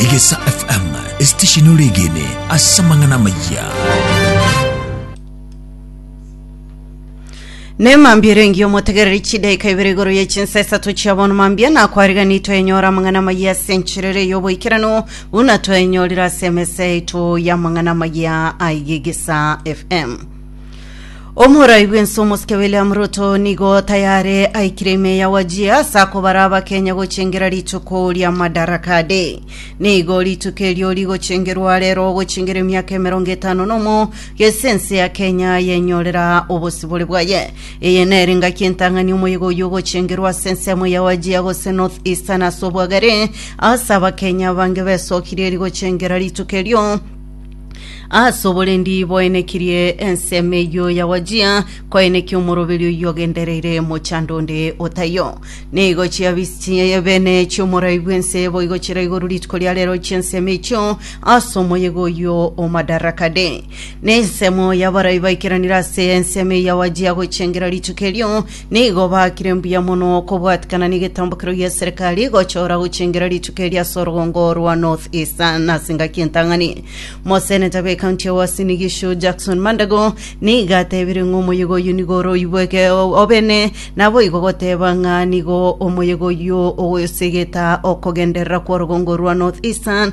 Egesa FM, esitesheni oregene ase amang'ana amayia. Ne mambia erengi omotegereri chidaika ibere igoro ye chinsa isato chia bono mambia nakwarigani toenyora amang'ana maya ase encherere y'oboikeranu buna toenyorire ase emesa yaito y'amang'ana maya aigegesa FM. Omorai bw'ense omosike William Ruto nigo tayare aikire ime ya Wajir ase akobara abakenya gochengera rituko ria Madaraka Day. Nigo rituko erio rigochengerwa rero gochengera emiaka emerongo etano nomo gese ense ya Kenya yenyorera obosibore bwaye. Eye nere engaki entang'ani omoyega oyio ogochengerwa ase ensemo ya Wajir gose North Eastern ase obwagare ase abakenya abange besokirie rigochengera rituko erio Ase oborendi boenekirie ensemo eyio ya Wajia, koenekia omoroberi oyio ogendereire mochando onde o taiyo. Nigo chiabisi chi'ebene chi'omorai bw'ense boigo chire igoro rituko ria reero chi'ensemo echio ase omoyega oyio o Madarakade. Nensemo y'abarai baikeranire ase ensemo eyio ya Wajia gochengera rituko erio, Nigo baakire mbuya mono kobwatikana negetambokero gia serikali gochora gochengera rituko eria ase orogongo rwa North Eastern ase engaki entang'ani. Moseneta be county ya Uasin Gishu Jackson Mandago nigo atebire ng'a omoyega oyio nigo ore oibweke obene naboigo goteba ng'a nigo omoyega oyio ogosegeta okogenderera kwa orogongo rwa North Eastern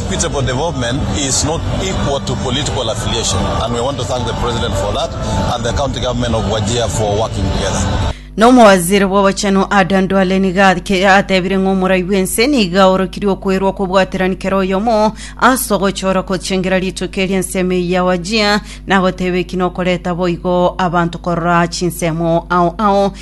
Equitable development is not equal to political affiliation and we want to thank the president for that and the county government of Wajir for working together. Na omowaziri bw'obochenu Adan Duale nigo ake- atebire ng'a omorai bw'ense nigo aorokirie okwerwa okobwaterani kera oyomo ase ogochora kochengera rituko eria ensemo eyio ya Wajir, na goteba eki nokoreta boigo abanto korora chinsemo ao ao